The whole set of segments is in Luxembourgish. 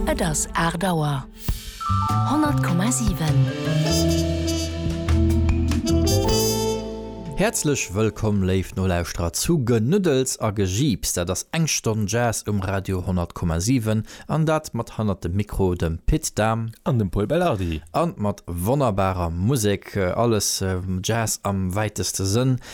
Et ass aacht Auer. 100,7. Häerzlech wëllkomm, léif Nolauschterer, zu Genuddels a Gejiips. Dat ass eng Stonn Jazz um Radio 100,7, an dat mat hannert dem Mikro dem Pit Dahm an dem Pol Belardi, an mat wonnerbarer Musek, alles Jazz am wäiteste Sënn.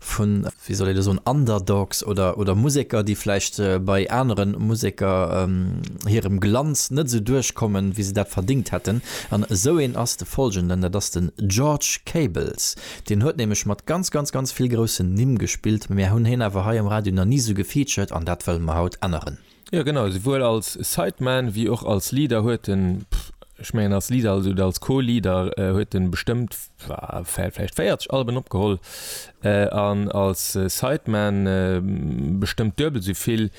vun, wéi soll ee da soen, Underdogs oder, oder Museker, déi vläicht bei anere Museker hirem Glanz net esou duerchkommen, wéi se dat verdéngt hätten. An esou een ass de Follgenden, dat ass de George Cables. Deen huet nämlech mat ganz, ganz, ganz vill groussen Nimm gespillt, mä mir hunn hien awer hei am Radio nach ni esou gefeatured an dat wëlle mer haut änneren. Jo genau, souwuel als Sideman wéi och als Leader huet en, ech mengen als Leader oder als Co-Leader huet en bestëmmt vläicht 40 Alben opgeholl an als Sideman bestëmmt duebel esou vill.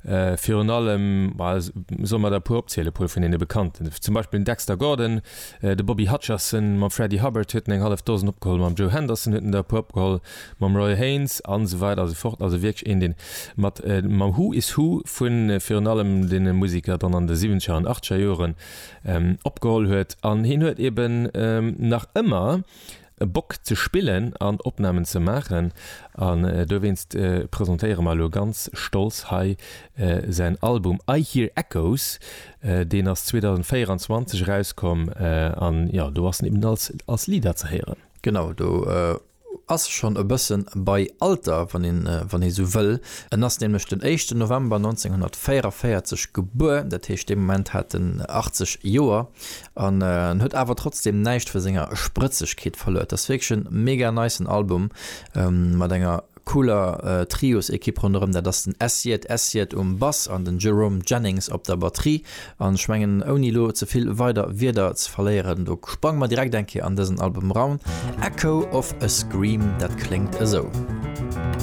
Virun allem, ma solle mer der e puer opzielen, e puer vun deene bekannten, zum Beispill den Dexter Gordon, de Bobby Hutcherson, mam Freddie Hubbard huet en eng hallef Dosen opgeholl, mam Joe Henderson huet en der e puer opgeholl, mam Roy Haynes an esou weider an esou fort, also wierklech een deen mat mam Who is Who vun virun allem den Musiker dann an de siwenzeger an achteger Joeren opgeholl huet an hien huet eben nach ëmmer Bock ze spillen an Opnahmen ze maachen an dowéinst presentéiere mer elo ganz stolz hei säin Album I Hear Echoes, deen ass 2024 erauskomm an jo do ass en eben als Lieder ze héieren. Genau do Ass schonn e bëssen bei Alter, wann een, wann ee sou wëll. En ass nämlech den éischten November 1944 gebuer, dat heescht dee Moment hat en 80 Joer an en huet awer trotzdem näischt vu senger Sprëtzegkeet verluer. Et ass wierklech en mega nicen Album mat enger cooler Trios-Ekipp ronderëm, dat ass den Essiet Essiet um Bass an den Jerome Jennings op der Batterie. An ech mengen, ouni elo ze vill weider Wierder ze verléieren, do sprange mer direkt eng Kéier an dësen Album eran, Echo of a Scream, dat kléngt esou.